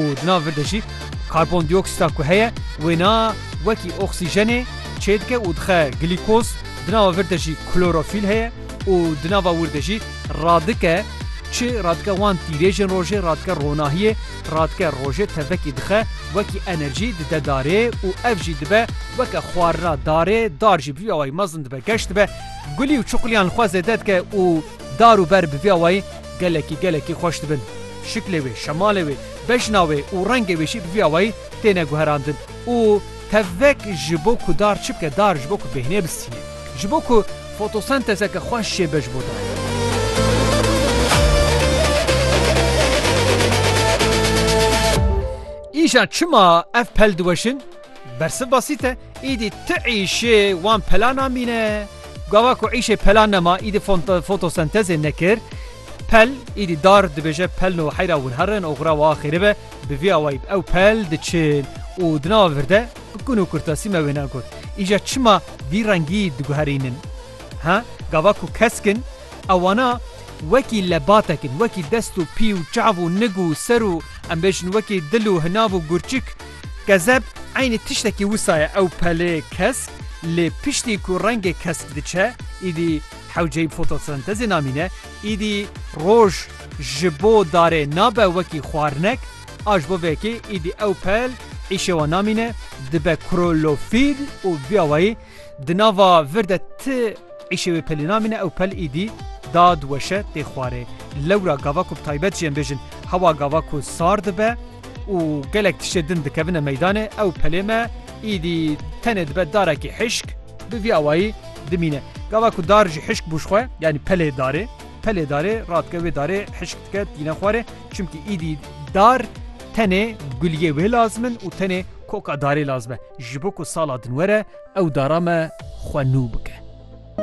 û di nav vir de jî karbondîoksîta ku heye wêna wekî oksîjenê çêdike û dixe glîkoz, di nava vir de jî klorofîl heye û di nava wir de jî radike çi radike wan tîrêjên rojê radike ronahiyê radike rojê tevekî dixe wekî enerjî dide darê û ev jî dibe weke xwarina darê dar jî bi vî awayî mezin dibe geş dibe gulî û çuqilîyan li xwe zêde dike û Dar û ber bi vî awayî gelekî gelekî xweş dibin. Şiklê wê, şemalê wê, bejna wê û rengê wê jî bi vî awayî têne guherandin û tevek ji bo ku dar çi bike, dar ji bo ku bêhnê bistîne, ji bo ku fotosentezeke xweş jêbibe ji bo dar. Îşan çima ev pel diweşin? Bersiv basît e, îdî ti îşê wan pela namîne. Gava ku îşê pela nema, îdî fotosentezê nekir. Pel, îdî dar dibêje pel no heyra wirherin oxira wa xêri be, bi vî awayî ew pel diçin û di nava vir de bi kun û kurtasî me wêne got. Îja çima vî rengî diguherînin? Ha, gava ku kesk in, ewana wekî lebatek in, wekî dest û pî û çav û nig û ser û em bêjin wekî dil û hinav û gurçik, Gezeb eynî tiştekî wisa ye ew pelê kesk lê piştî ku rengê kesk diçe îdî hewceyî fotosentezê namîne îdî roj ji bo darê nabe wekî xwarinek a ji bo vê yekê îdî ew pel îşewa namîne dibe krolofîl û vîawayî Di nava vir de ti îşê wê pelî namîne, ew pel îdî dad weşe tê xwarê. Lewra gava ku bi taybet jî em bêjin hewa gava ku sar dibe û gelek tiştê din dikevine meydanê, ew pelê me îdî tenê dibe darekî hişk, bi vî awayî dimîne. Gava ku dar ji hişk bû ji xwe, yanî pelê darê, pelê darê radike wê darê hişk dike tîne xwarê, çimkî îdî dar tenê guliyê wê lazim in û tenê Koka darê lazme, ji bo ku sala din were ew dara me xwe nû bike.